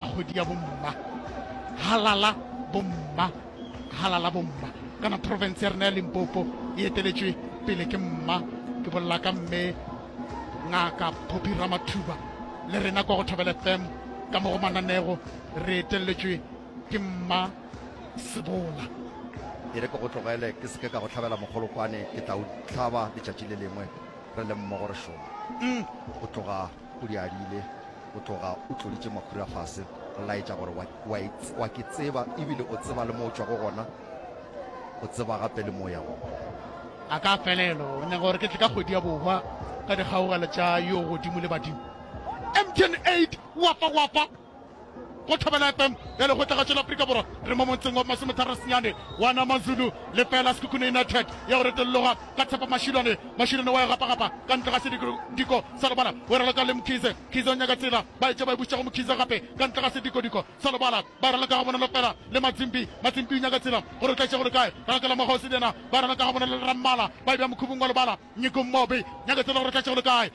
kgwedi ya bomma halala bomma halala bomma kana province ya rena ya limpopo e eteletšwe pele ke mma ke bolela ka mme ngaka poppy ramathuba le rena kwa go thobele fem ka mo go mananego re eteletšwe ke mma sebola e re ke go tlogele ke seke ka go tlhabela mogolokwane ke tla o tlhaba letšatši le lengwe re le mmogo re šoma mm. go tloga O diarile, o tloga o tloditše makhura fase, o laetša gore, Wa, wa e, wa ke tseba, ebile o tseba le mo o tšwago gona, o tseba gape le mo o yago gona. A ka felelo, o nyaka gore ke tle ka kgwedi ya bohwa ka dikgaogelo tša Yo Godimo le badimo? Empty and Eight, Wapa, Wapa! Go thobela FM ya lekgotlagatšo la Afrika Borwa re mo montseng wa masometharo senyane wa na Mazulu lefela Sekhukhune United ya go retolologa ka Tshepo Mashilwane Mashilwane wa e gapagapa ka ntle ga sediko sa lobala o e raloka le Mkhize Mkhize o nyaka tsela ba etša ba e buša go Mkhize gape ka ntle ga sedikodiko sa lobala ba raloka ga bonolo fela le Matsimbi Matsimbi o nyaka tsela gore o tla itša gore kae ralokela mokgwa o se le yena ba raloka ga bonolo le Rammala ba e bja mokhubung wa lobala Nyiko Mmobe nyaka tsela gore o tla itša gore kae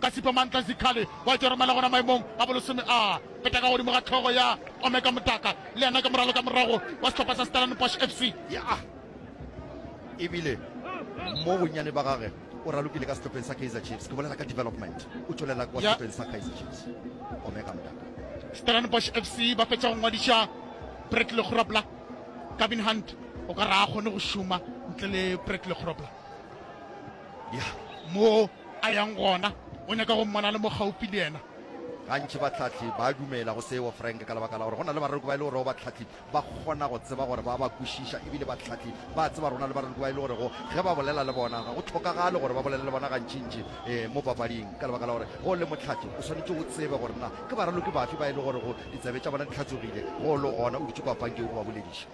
Ka Sipho Mantle Zikhali wa Tšoromela gona maemong a bolesome a peta ka godimo ga hlogo ya Omeka Motaka le yena ke moralo ka morago wa sehlopha sa Stellenbosch FC. Ya e bile mo bonnyane ba gage o ralokile ka sehlopheng sa Kaizer Chiefs, ke bolela ka development, o tšwelela kwa Ya. sehlopheng sa Kaizer Chiefs Omeka Motaka. Stellenbosch FC ba fetša go ngwadiša Bradley Grobler. Gavin Hunt o ka re ga a kgone go šoma ntle le Bradley Grobler. Ya mo A yang gona? O nyaka go mmona a le mo gaufi le yena? Gantši bahlahli ba a dumela go seo, Frank, ka lebaka la gore go na le barereko ba e le gorego bahlahli ba kgona go tseba gore ba a ba kwešiša. E bile bahlahli ba a tseba gore go na le barereko ba e le gorego ge ba bolela le bona ga go hlokagale gore ba bolele le bona gantšintši ee mo papading, ka lebaka la gore ge o le mohlahli o swanetše o tsebe gore na ke baraloki bafe ba e le gorego ditsebe tša bona di hlatsogile ge o le gona o dutše kwa pankeng o ba bolediša.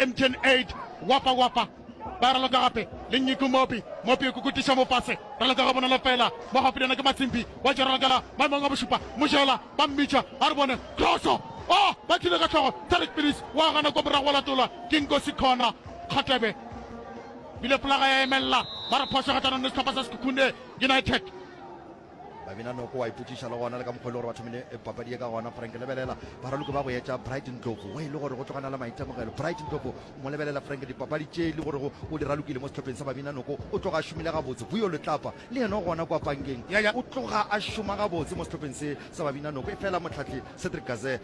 Mtn Aid, Wapa Wapa ba raloka gape le Nyiku Mopi, Mopi o kukutiša mofase, raloka ga bonolo fela, mo gaufinyana ke Matsimpi, wa tšwa ralokela maemong a bošupa, Mojela, ba mmitša, a re bone, Kroso! Oh, ba thile ka hlogo, Tariq Pilis, wa gana kwa morago wa latolwa ke Nkosi Khona, Kgatebe, bile folaga ya emelela, ba re phošo gatanong le sehlopha sa Sekhukhune United. babina noko wa ipotšiša le gona le ka mokgwa e le gore ba thomile e papadi ye ka gona frank lebelela baraloki ba go etša bright ntlopo wa e le gore go tlogana le maitemogelo bright ntlopo mo lebelela frank dipapadi tše le gorego o di ralokile mo sehlopheng sa babina noko o tloga a šomile gabotse buyo letlapa le yena o gona kwa pankeng o tloga a šoma gabotse mo sehlopheng se sa babina noko e fela motlhatlhi cedric gaze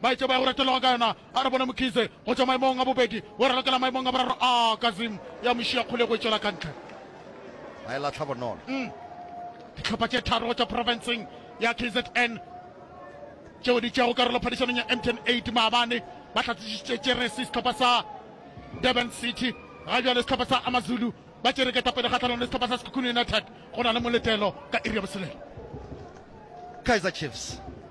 Maitsebo a go retologa ka yona a re bone Mkhize go tšwa maemong a bobedi go ralokela maemong a boraro a Kazim ya mo šiya kgole go e tšwela ka ntle. Ba e lahla bonolo. Dihlopha tše tharo go tšwa profenseng ya KZN tšeo di tšeago karolo phadišanong ya Mtn 8 maabane ba hlatsisišitše tšeresi sehlopha sa Durban City. Ga bjale sehlopha sa AmaZulu ba tšere ketapele kgahlanong le sehlopha sa Sekhukhune United go na le moletelo ka iri ya botshelela. Kaizer Chiefs